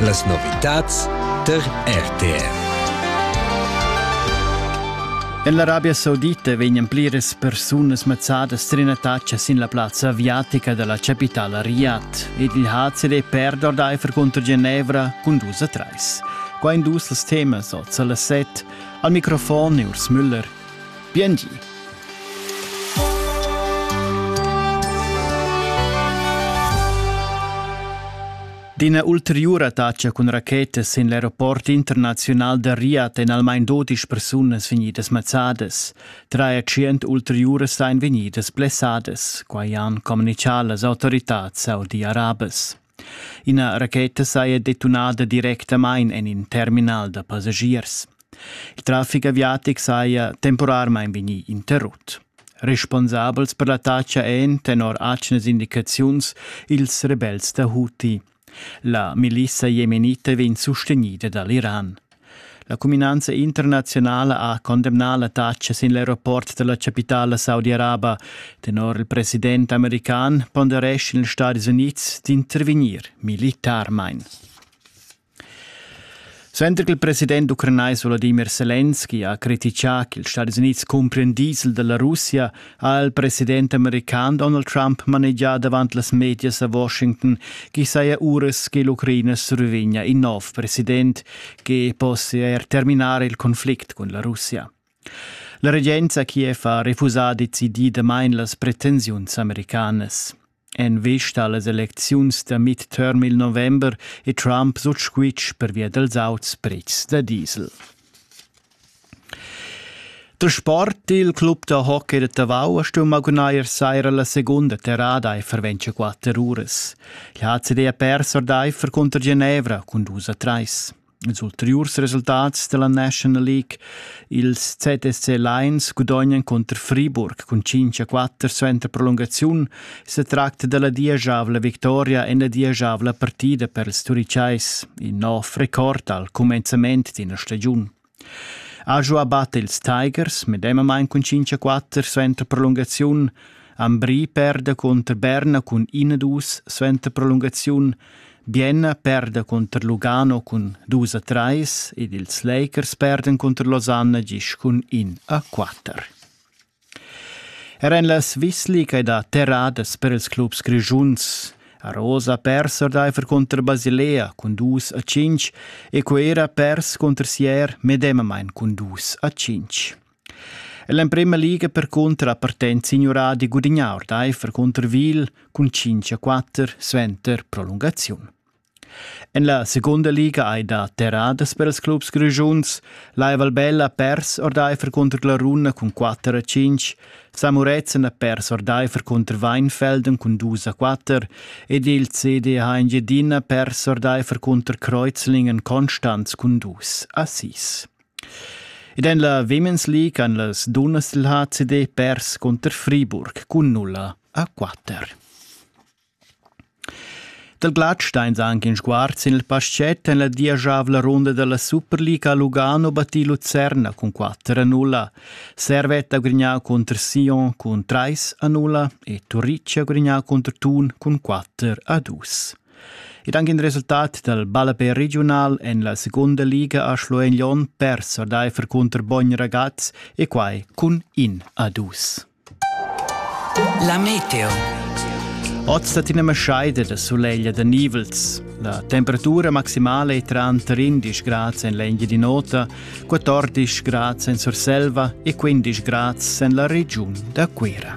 Las novitads tar RTR. En l'Arabia Saudita vegnan pliras persunas mazzadas trinataccia sin la plazza aviatica della capitala Riyadh ed il HCD perd ordaifer contro Genevra cun dus a treis. Qua indus els temas oz alle set. Al microfon Urs Müller. Biengi. D'ina ulteriura tatscha cun rachetas sin l'aeroport internaziunal da Riyadh èn almain dodisch persunas vegnidas mazzadas. Tschient ulteriuras ein vegnidas blessadas, quai han communitgà las autoritads saudi-arabas. Ina racheta saja detunada directamain en in terminal da passagiers. Il traffic aviatic saja temporarmain vegnì interrut. Responsabels per l'attacca èn, tenor atgnas indicaziuns, ils rebels da Houthi. La milissa jemenita vegn sustegnida da l'Iran. La cuminanza internaziunala ha condemnà la taxa sin l'aeroport della capitala saudi-araba. Tenor il president american ponderescha ils Stati Unids d'intervenir militarmain. Suenter che il president ucranais Volodymyr Zelensky ha critichà che ils Stati Uniti cumprien diesel della Russia, ha il president american Donald Trump manegià davant las medias a Washington ch'i saja uras che l'Ucraina survegnia in nov president che possia er terminar il conflict cun la Russia. La regenza Kiev ha refusà decididamain las pretensiuns americanas. En vista allas elecziuns da midterm il november è Trump sut squitsch pervia dals auts prezs da diesel. Der Sport, il club da hockey de Tavau, ha stumm gunair saira la segunda terrada e verventscha quatter uras. Il HCD ha pers ordaifer cunter Genevra cun dus a treis. Ils ulteriurs resultats della National League. Ils ZSC Lions gudognan contro Friburg cun 5 a 4 suenter prolungaziun. Se tracta della diesavla victoria en la diesavla partida per ils turicais, in nov record al comenzament d'ina stagiun. Ajo abbatte ils Tigers medemamain cun 5 a 4 suenter prolungaziun. Ambri perde contro Berna cun 1-2 suenter prolungaziun. Bienna perda cunter Lugano cun dus a trais ed ils Lakers perdan cunter Losanna gis cun in a quatter. Er en la Svisliga è da terradas per ils clubs grischuns. A Rosa pers ordaifer cunter Basilea cun dus a cinc e Cuera pers cunter Sier medemamain cun dus a cinc. L'emprema liga percunter ha partent signurà di gudignar ordaifer cunter Wiel cun 5 a 4 suenter prolungaziun. En la secunda liga hai dà terradas per ils clubs grischuns. La Valbella ha pers ordaifer cunter la Runa cun 4 a 5, Samuretzen ha pers ordaifer cunter Weinfelden cun 2 a 4 ed il CDH Engiedina ha pers ordaifer cunter Kreuzlingen Konstanz cun 2 a 6. Ed en la Women's League han las dunnas dil HCD pers cunter Friburg cun nulla a quatter. Dal glatsch steins anche in sguard sin il paschet en la diagiavla runda dalla Superliga a Lugano battì Lucerna cun 4 a 0, Servette ha grignà contro Sion cun 3 a 0 e Turicci ha grignà contro Thun cun 4 a 2. Ed anche il resultat dal ballapè regiunal en la segunda liga a Schluein-Lyon pers ordaifer cunter Bogn Ragaz e quai cun in a dus. La meteo. Oz dat ina maschaida da suleglia da nivels. La temperatura maximala è tranter 11 grads en l'Engia di Nota, 14 grads en Surselva e 15 grads en la regiun da Cuira.